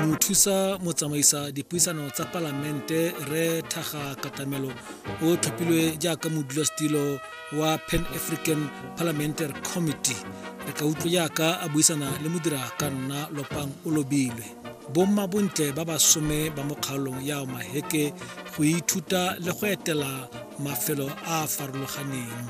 mothusa motsamaisa dipuisano tsa palamente re thaga katamelo o tlhophilwe jaaka modulasetilo wa pan african parliamentary committee re ka utlwa jaaka a buisana le modira ka nna lopang o lobilwe bomma bontle ba basome ba mo kgaolong ya maheke go ithuta le go etela mafelo a a farologaneng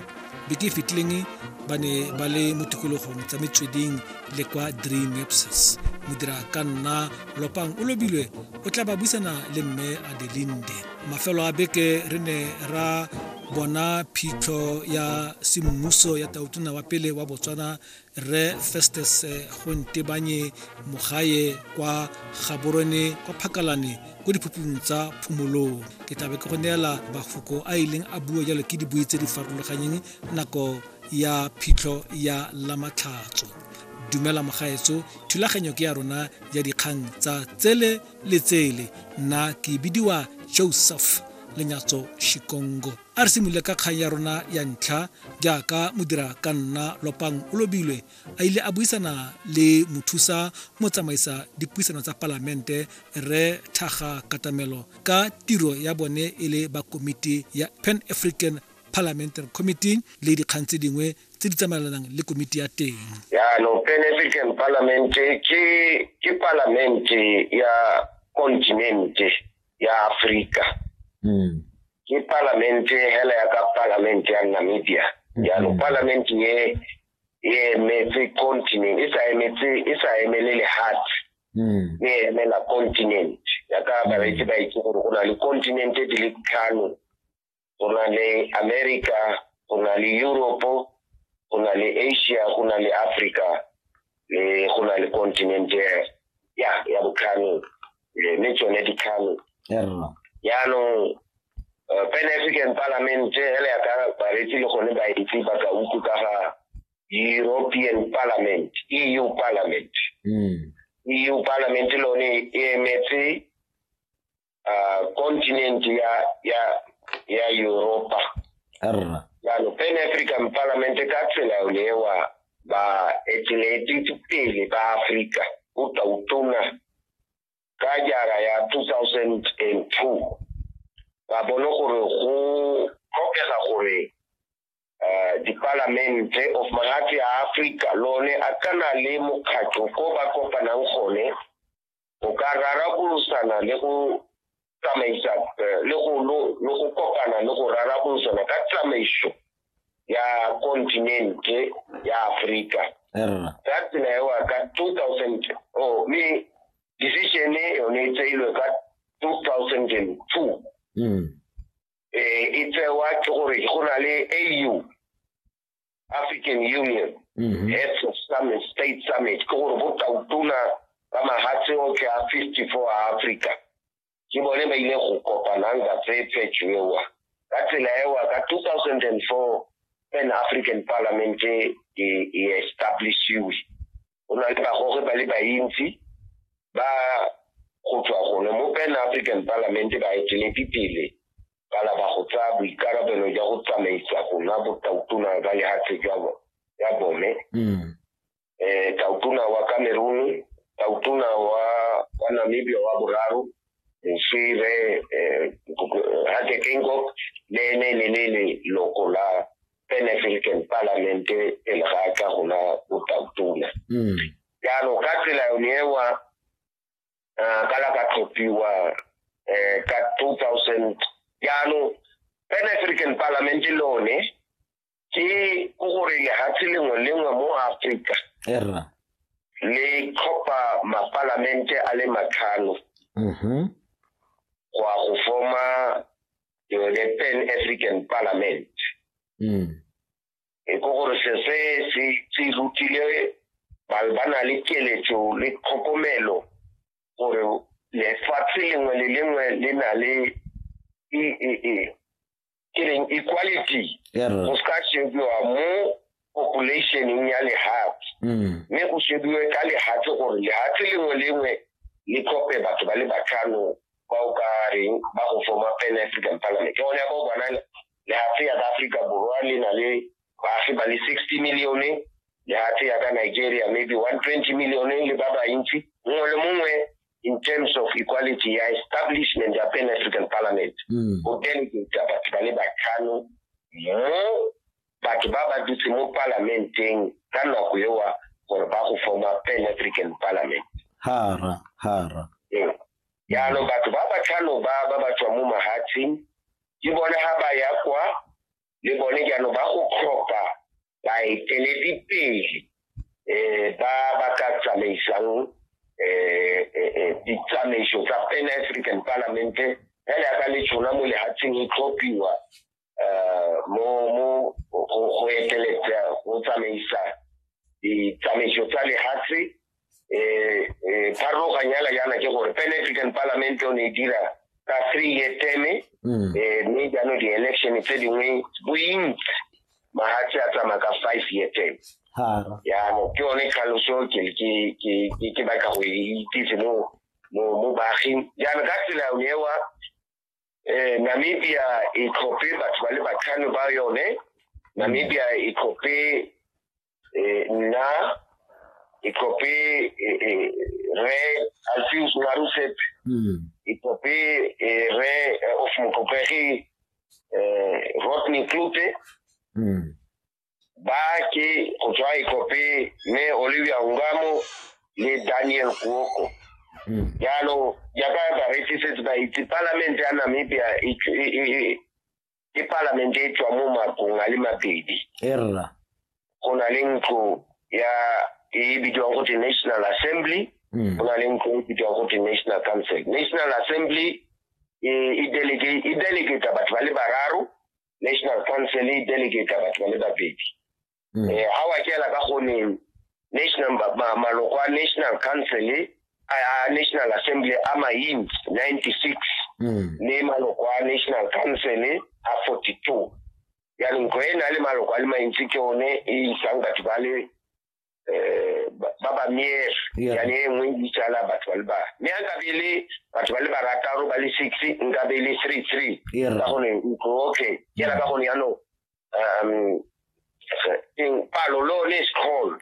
beke e fetileng ba ne ba le mo tikologong tsa metsweding le kwa dreamapses modira ka nna lopang o lobilwe o tla ba buisana le mme adelinde mafelo a beke re ne ra bona phitlho ya semmuso ya tautona wa pele wa botswana re festes eh, go ntebanye mogae kwa gaborone kwa phakalane ko diphuphung tsa phomolong ke tlabe ke go neela mafoko a ileng a bua jalo ke dibui tse di farologanyeng nako ya phitlho ya lamatlhatso dumela mogaetso thulaganyo ke ya rona ya dikgang tsa tsele le tsele nna ke bidiwa joseph lenyatso shikongo a re simolole ka kgang ya rona ya ntlha jaaka modira ka nna lopang o lobilwe a ile a buisana le mothusa motsamaisa dipuisano tsa palamente re thaga katamelo ka tiro ya bone e le ba komiti ya pan african Parliamentary Committee le dikgang tse dingwe tse di tsamaelanang le komiti ya teng. Yaanong Pan African Parliament ke ke palamente ya kontinente ya Afrika. Mm. Ke palamente hela ya ka palamente ya Namibia. Mm-hmm. Yaanong mm. palamente ye e emetse continent e sa emetse e sa emele lehatshe. Mm. E emela continent ya ka bareetsi ba itse gore go na le continente di le tlhano go na le america go na le europe go na le asia go na le africa le go na le continent ya ya botlhano mme tsone ditlhano jaanong eh, pan african parliament ele ya ka baretsi le gone baitse ba ka utlwe ka ga european parliament eu parliament mm. eu parliament lone e emetse uh, continent ya ya ya Europa arra jalo pan african parliament ka tsela yone ewa ba eteletse pele ba africa o tautona ka jara ya 2002 ba bone gore go tlhokega gore eh, dipalamente of magatse a africa lone a kana le mokgatlho ko ba kopanang gone go ka rarabolosana le go tsamaisa eh, le go kopana le go rarabolosana ka tsamaiso ya kontinente ya aforika ka tsela ewa ka 2000 o mme decision e yone e tseilwe ka 2002 e tsewa ke gore go na le au African Union mm -hmm. heads of summit state summit ke gore botautona ba mahatshe otlhe a fifty four a Africa ke bone ba ile go kopanang ka tsetsetsho ewa ka tsela ewa ka two thousand and four pan African Parliament e, e establishiwe go na le bagoge ba le bantsi ba go tswa gone mo pan african parliament ba eteledi pele ba laba go tsaya boikarabelo jwa go tsamaisa gona botautona ba lehatshe jwa ya bone mm. eh tautona wa cameroon tautona wa wa namibia wa boraro moswire eh, eh hakekengok le ne le le loko la an African Parliament pele ga a tla go nwa botautona hmm. jaanong ka tsela yone ewa um ka la ka tlhophiwa um ka two thousand jaanong an African Parliament le one ke ko gore lehatshe lengwe lengwe mo Afrika le tlhopha mapalamente a le matlhano mm-hmm. go ya go forma ke yone pan african parliament mm. e ko gore se se se se rutile ba ba na le keletso le tlhokomelo gore lefatshe lengwe le lengwe le na le e e e ke reng equality go se ka shebiwa mo populationeng ya lehatshe mm. mme go shebiwe ka lehatshe gore lehatshe lengwe lengwe le tlhope batho ba le batlhano ba o ka reng ba go forma pan african parliament ke gone ya ba o bona lehatshe ya ka aforika borwa le na le baagi ba le sixty millione lehatshe ya ka nigeria maybe one twenty millione le ba bantsi mongwe le mongwe in terms of equality ya establishment ya pan african parliament mm. go delegate batho ba le batlhano mo batho ba ba dutse mo palamenteng ka nako ewa gore ba go forma pan african parliament hara hara ee. jaanong batho ba ba tlhano ba ba ba tswa mo mahatsheng ke bone ga ba ya kwa le bone jaanong ba go tlhopha baeteledipele um ba ba ka tsamaisang um ditsamaiso tsa pan african parlamente fela ya ka le tshona mo lehatsheng e tlhophiwa eh, mo go eteletsa go tsamaisa ditsamaiso tsa lehatshe um eh, eh, pharologanyala yana ke gore pan african parliament o ne e dira ka three year teme mm. eh, mme jaanong di-election tse dingwe bointsi mahatshe a tsamaya ka five year term yaano ke yone tlhaloso ke batla go e itsise mo baaging jaanong ka tsela ewa eh, namibia e tlhophe batho ba le batlhano ba yone namibia e tlhophe eh, nna e tlhophe eh, eh, re alfius marusep mm. e tlhophe eh, re eh, of mokopegi eh, rodney klute mm. Bake go tswa Ikope mme Olivia Ngamo le Daniel Kuoko hmm. jalo jaaka bareetsi setse ba itse palamente ya Namibia e, e, e, ke palamente e tswa mo makong a le mabedi erra go na le ntlo ya e bidiwang go te national assembly hmm. go na le ntlo e bidiwang go te national council national assembly e, e delegate e delegate batho ba le bararo national council e delegate batho ba le babedi mm. eh ha wa kela ka gone national maloko a national council a national assembly a maint 96 mm. le maloko a national council a 42 ya ntlo e na le maloko a le mantsi ke one e isang batho ba le eh, ba ba ba miere Yeah. yane e nngwe e bitsala batho ba le ba mme a nkabe e le batho ba le barataro ba le six nkabe e le three three Yeah. ka gone ntlo okay ke ra ka gone yanong um eng palo lo ne is called